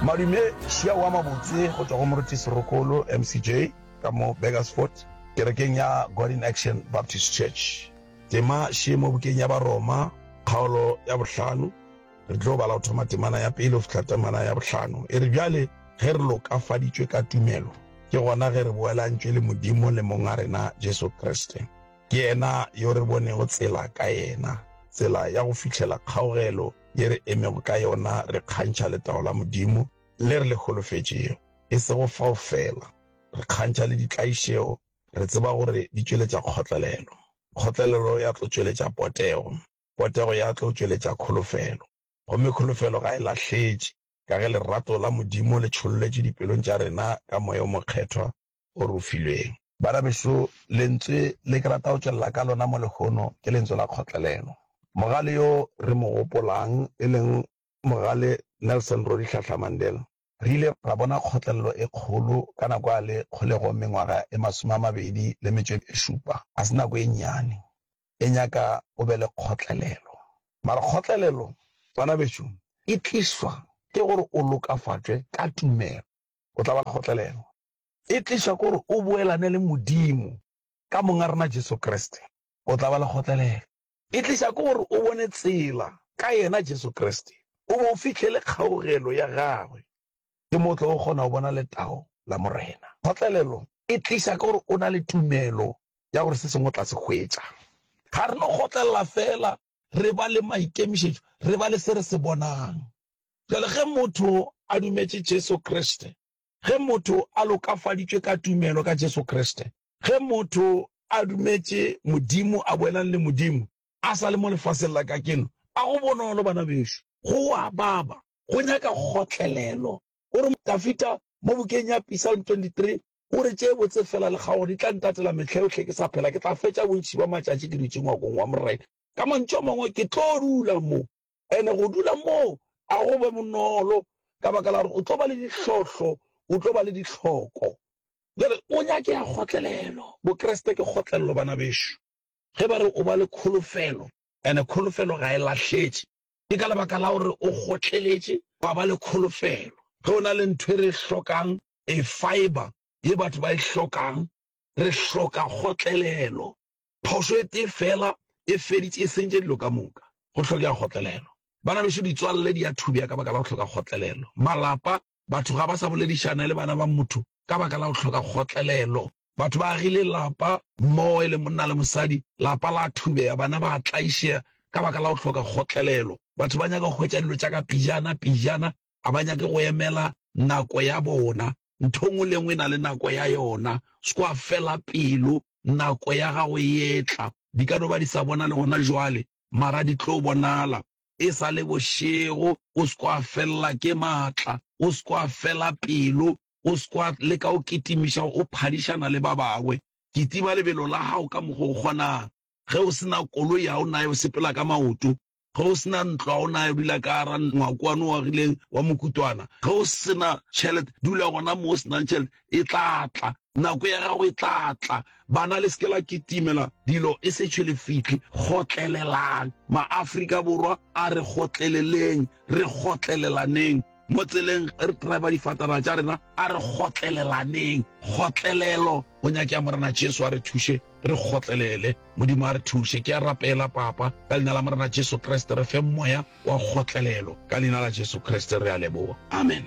Madume Šiao wa mabotse go tšwa go Moruti Serokolo, MCJ, ka mo Burgersfort, kerekeng ya God in Action Baptist Church. Tema Šie mo bukeng ya Baroma, kgaolo ya bohlano. Re tlo bala go thoma temana ya pele go fihla temana ya bohlano. E re, Bjale ge re lokafaditšwe ka tumelo, ke gona ge re boelantšwe le Modimo le Monga rena Jesu Kriste. Ke yena yo re bonego tsela ka yena, tsela ya go fihlela kgaogelo. ye re emego ka yona re kgantšha letago la Modimo le re le holofetšego. E sego fao feela, re kgantšha le ditlaišego re tseba gore di tšweletša kgotlelelo, kgotlelelo ya tlo tšweletša potego, potego ya tlo tšweletša kholofelo, gomme kholofelo ga e lahletše, ka ge lerato la Modimo le tšholletšwe dipelong tša rena ka Moya o Mokgethwa o re o filweng. Banabešo, lentswe le ke rata go tšwelela ka lona mo lehono ke lentswe la kgotlelelo. Mogale yo re mo gopolang, e leng Mogale Nelson Rolihlahla Mandela, re ile ra bona kgotlelelo e kgolo ka nako a le kgolegong mengwaga e masome a mabedi le metšo e šupa. Ga se nako e nnyane, e nyaka o be le kgotlelelo. Mara kgotlelelo, banabešo, e tlišwa ke gore o lokafatšwe ka tumelo. o tla ba kgotlelelo e tliša ke gore o boelane le Modimo ka Monga rena Jesu Kriste. O tla ba le kgotlelelo e tliša ke gore o bone tsela ka Yena Jesu Kriste, o be o fihle le kgaogelo ya Gagwe. Ke mo o tlogo kgona go bona letao la Morena. Kgotlelelo e tliša ke gore o na le tumelo ya gore se sengwe o tla se hwetša. Ga re no kgotlelela feela re ba le maikemišetšo, re ba le se re se bonang. Bjale ge motho a dumetše Jesu Kriste, ge motho a lokafaditšwe ka tumelo ka Jesu Kriste, ge motho a dumetše Modimo a boelang le Modimo, a sa le mo lefaseng la kakeno, a go bonolo, bana bešo. Go a baba, go nyaka kgotlelelo. O re, Dafida, mo bukeng ya Pisalm 23, O re, Tše botse feela lekgaogo di tla ntatela mehla yohle ke sa phela. Ke tla fetša bontši bja matšatši ke dutše ngwakong wa Morena. Ka mantšu a mangwe, ke tlo dula mo. And go dula mo ga go be bonolo, ka baka la gore o tlo ba le dihlohlo, o tlo ba le dihloko. Bjale, o nyakea kgotlelelo. Bokreste ke kgotlelelo, bana bešo. Ge ba re o ba le kholofelo, and kholofelo ga e lahletše, Ke ka lebaka la gore o kgotleletše wa ba le kholofelo. Ge o na le ntho e re e hlokang, a fibre, ye batho ba e hlokang, re hloka kgotlelelo. Phošo e tee feela e feditše, e sentše dilo ka moka. Go hlokega kgotlelelo. Bana bešo, ditswalle di a thubja ka baka la go hloka kgotlelelo. Malapa Batho ga ba sa boledišana le bana ba motho ka baka la go hloka kgotlelelo. Batho ba agile lapa mmogo e le monna le mosadi, lapa la thubega, bana ba tlaišega ka baka la go hloka kgotlelelo. Batho ba nyaka go hwetša dilo tša ka pejana pejana, ga ba nyake go emela nako ya bona. Ntho nngwe le nngwe e na le nako ya yona, se kwa fela pelo, nako ya gago e etla. Di ka no ba di sa bonale gona jwale, mara di tlo bonala. e sa le bošego, o se ke wa felela ke maatla, o se ke wa fela pelo, o se ke wa leka go kitimiša gore o phadišana le ba bangwe. Kitima lebelo la gago ka mokgwa o kgonago. Ge o se na koloi, ga o naye o sepela ka maoto. Ge o se na ntlo, ga o naye o dula ka gara ngwakwana o agileng wa mokutwana. Ge o se na tšhelete, dula gona mo o se nang tšhelete. e tla tla, nako ya gago e tla tla. Bana le seke la kitimela dilo e se tšhe le fitlhe. Gotlelelang. Maaforika Borwa a re gotleleleng, re gotlelelaneng. Mo tseleng ge re driver difatanaga tša rena a re gotlelelaneng. Kgotlelelo go nyakega Morena Jesu a re thuše re gotlelele. Modimo a re thuše. Ke a rapela Papa ka leina la Morena Jesu Kriste re fe moya wa kgotlelelo ka leina la Jesu Kriste re a leboga. Amen.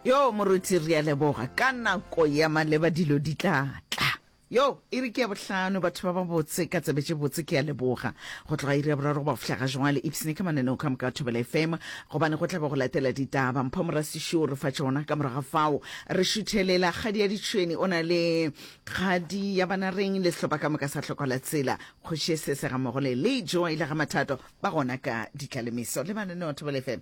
Yoo, Moruti, re a leboga. Ka nako ya maleba dilo di tla tla. Yoo, iri ke ya bohlano, batho ba babotse ka tsebe tše botse, ke a leboga. Go tloga iri ya boraro go ba go fihla ga jwale, ipsne ka mananeo ka moka a Thobela FM, gobane go tla be go latela ditaba. Mpho Morasiši o re fa tšona. Ka morago ga fao, re šuthelela. Kgadi ya ditšhwene o na le Kgadi ya bana reng, le sehlopa ka moka sa Hlokola Tsela, Kgoši Esese gammogo le Lee Joy le Gamathato ba gona ka ditlalemeso le mananeo a Thobela FM.